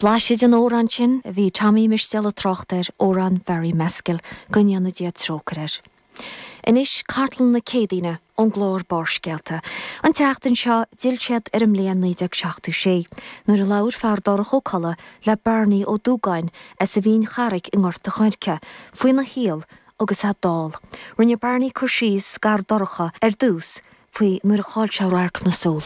Blaiseadh den amhrán sin a bhí Tommy Mistéal ag trácht air, amhrán Barry Mescal, go ndéana Dia trócaire air. Anois cartlann na Céadaoine ón gclár Barrscéalta. An tseachtain seo d'fhill siad ar an mbliain 1976 nuair a labhair Feardorcha Ó Colla le Barney Ó Dúgáin as an Mhín Charraigh i nGort a' Choirce faoina shaol agus é dall. Rinne Barney cur síos d'Fheardorcha ar dtús faoi nuair a chaill sé radharc na súl.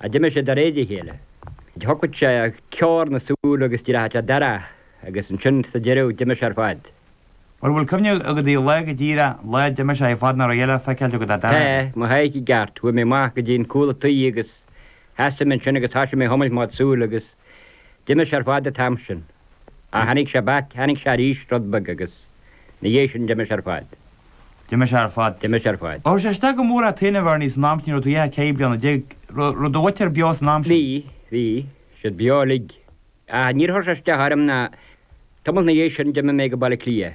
a d'imigh sé de réir a chéile. Thoisigh sé ar chorr na súl agus d'éirigh an áit dorcha agus ansin sa deireadh d'imigh sé ar fad. An bhfuil cuimhne agat ar an lá go díreach lá a d'imigh sé ar fad nach raibh a dhath le feiceáil agat ach dorcha Tá agus. mo shaoirse i gceart. Chuaigh mé amach go dtí an cúl a' toí agus sheasaigh mé ansin agus thoisigh mé a chuimilt mo chuid súl agus D'imigh sé ar fad an t-am sin. Ach tháinig sé back, tháinig sé arís rud beag agus 'na dhiaidh sin d'imigh sé ar fad. D'imigh sé ar fad. D'imigh sé ar fad. Ar chuir sé isteach go mór ort, a Bharney, san am sin ní raibh tú ach ceithre bliana déag. Raibh do mhuintir beo san am sin. Bhí, bhí siad beo uilig. Ach níor chuir sé isteach orm ná, tamall 'na dhiaidh sin d'imigh mé go Baile Átha Cliath.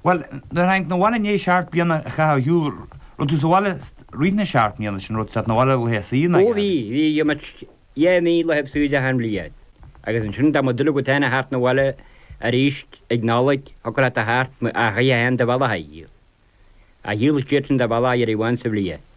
Bhuel, nuair tháinig na bhaile ndéigh seart bliana a chaitheamh a shiúl rud tú sa bhaile rith na seart mbliana sin rud seat na bhaile laethas suí in Ó aghaidh bhí, an. bhí jomait dheich mí laethibh suí de achan bhliain. Agus ansin dá mo duine go teine thart na bhaile aríst ag Nollaig shocair ata thart, mo, a dhaidh a haon de bhalla a shaoil. A shaoil siad sin de bhalla a dheiridh amháin sa bhliain.